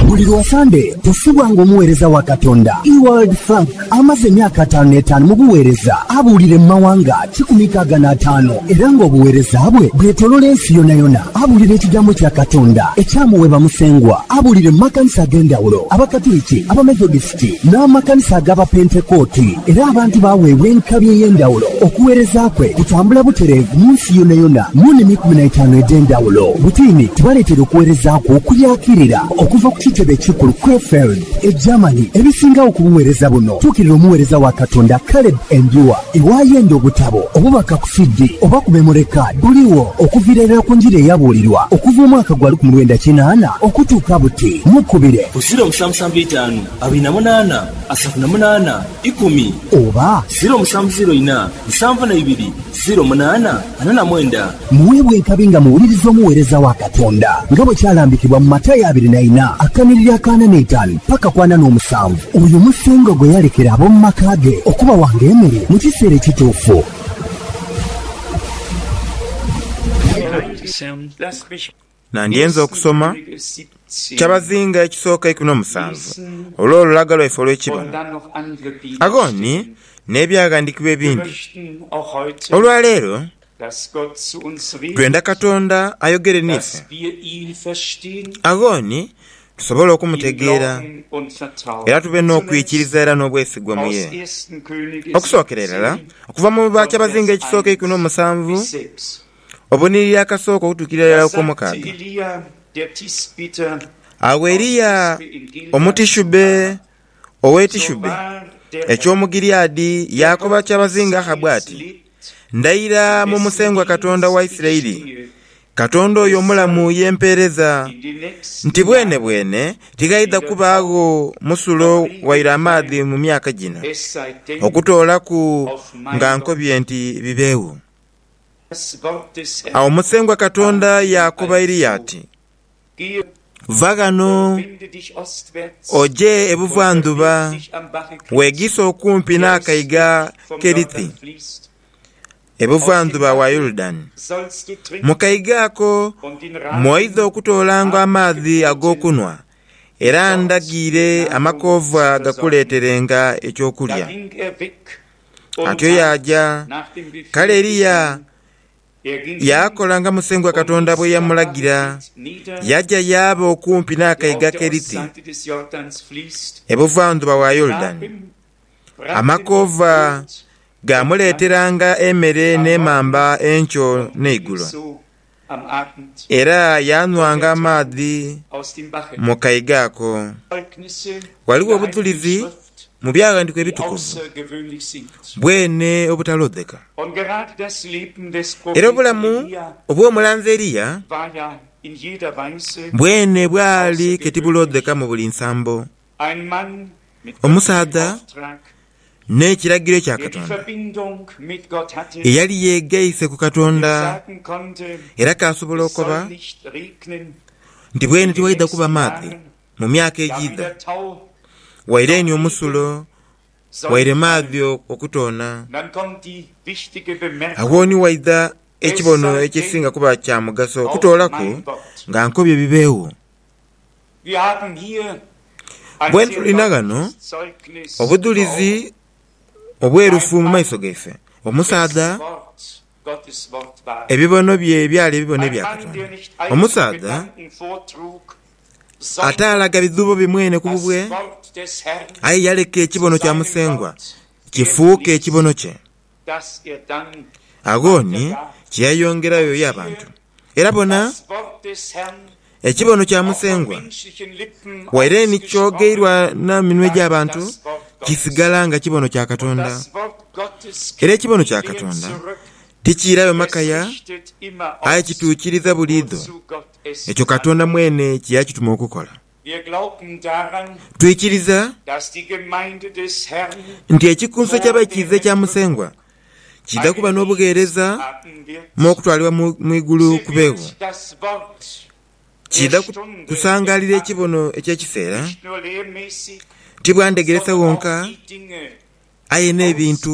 Buli lwa Sande tusubwa ng'omuweereza wa Katonda Ewald Frank amaze emyaka ataanu n'etaanu mu buweereza, abuulire mu mawanga kikumi nkaaga n'ataano, era ng'obuweereza bwe bwetolola ensi yonayona. Abuulira ekigambo kya Katonda ekyamuweebwa Musengwa, abuulire mu makanisa ag'endhawulo, Abakatuliki, Abamethodist, n'amakanisa ag'Abapentekooti, era abantu baaweebwa enkabi ey'endhawulo. Okuweereza kwe kutambula butereevu mu nsi yonayona mu nimi ikumi na itaanu edh'endhawulo. Butiini tubaleetera okuweereza kwe okuyaakirira okuva ku kitebe ekikulu Krefeld, e Germany. Ebisingagho ku buweereza buno, tuukirira omuweereza wa Katonda Caleb Endua. Iwaayo endhu, obutabo, obubaka ku CD, oba ku memory card buligho okuviira irala ku njiri eyabuulirwa okuva omwaka gwa lukumi lwenda kinaana okutuuka buti. Mukubire. Amakumi eitaanu abiri na munaana asatu na munaana ikumi. Oba, ziro musanvu ziro ina nsanvu na ibiri ziro munaana ana na mwenda. Muweebwe enkabi nga muwuliriza omuweereza wa Katonda, nga bwe kyalambikibwa mu Matayo abiri na ina akanhiriri aka ana n'eitaanu paka ku ana n'omusanvu. Oyo Musengwa gwe yalekera ab'omu maka ge okubawanga emere mu kiseera ekituufu. Nandyenze okusoma kyabazinga ekisooka eikumi n'omusanvu olw'olulaga lwaife olw'ekibono. Agho ni n'ebyaghandikibwa ebindi. Olwa leero twenda Katonda ayogere n'ife. Agho ni tusobole okumutegeera era tube n'okwikiriza era n'obwesigwa mu ye. Okusookera irala, okuva mu bakyabazinga ekisooka eikumi n'omusanvu, Obunhiliri akasooka okutuukirira irala ku kw'omukaaga. Agho Eliya Omutishubbe ow'e Tishubbe eky'omu Gileadi yaakoba kyabazinga Ahabu ati, Ndayira mu Musengwa Katonda wa Isiraeli, Katonda oyo omulamu ye mpeereza, nti bwenebwene tighaidha kubaagho musulo waire amaadhi mu myaka gino, okutoolaku nga nkobye nti bibeegho. Agho Musengwa Katonda yaakoba Eliya ati, Va ghano oje ebuvandhuba, weegiise okumpi n'akaiga Kerithi, ebuvandhuba wa Yorudani. Mu kaiga ako mw'oidha okutoolanga amaadhi ag'okunhwa, era ndhagiire amakoova gakuleeterenga eky'okulya. Atyo yaaja. Kale Eliya yaakola nga Musengwa Katonda bwe yamulagira, yaja yaaba okumpi n'akaiga aKeriti, ebuvandhuba wa Yorudani. Amakoova gaamuleeteranga emere n'emamba enkyo n'eigulo, Era yaanhwanga amaadhi mu kaiga ako. Ghaligho obuthulizi mu Byaghandiikwa Ebitukuvu bwene obutalodheka. Era obulamu obw'omulanzi Eliya bwene bwali ke tibulodheka mu buli nsambo. Omusaadha n'ekiragiro ekya Katonda eyali yeegaise ku Katonda era k'asobola okoba nti bwene tiwaidha kuba maadhi mu myaka egiidha, waire ni omusulo, waire maadhi okutoona. Agho ni waidha ekibono ekisinga kuba kya mugaso okutoolaku nga nkobye bibeegho. Bwe tulina ghano obudhulizi obwerufu mu maiso gaife, omusaadha ebibono bye byali ebibono ebya Katonda. Omusaadha ataalaga bidhubo bye mwene ku bubwe, aye yaleka ekibono kya Musengwa kifuuke ekibono kye. Agho ni kye yayongerayo y'abantu. Era bona, ekibono kya Musengwa waire ni kyogeirwa na minwe gya bantu, kisigala nga kibono kya Katonda. Era ekibono kya Katonda tikiirayo makaya, aye kituukiriza buliidho ekyo Katonda mwene kye yakituma okukola. Twikiriza nti Ekikunso ky'Abaikiiza ekya Musengwa kiidha kuba n'obugheereza mu okutwalibwa mu igulu ku beebo. Kiidha kusangaalira ekibono eky'ekiseera, ti bwa ndegeresa wonka, aye n'ebintu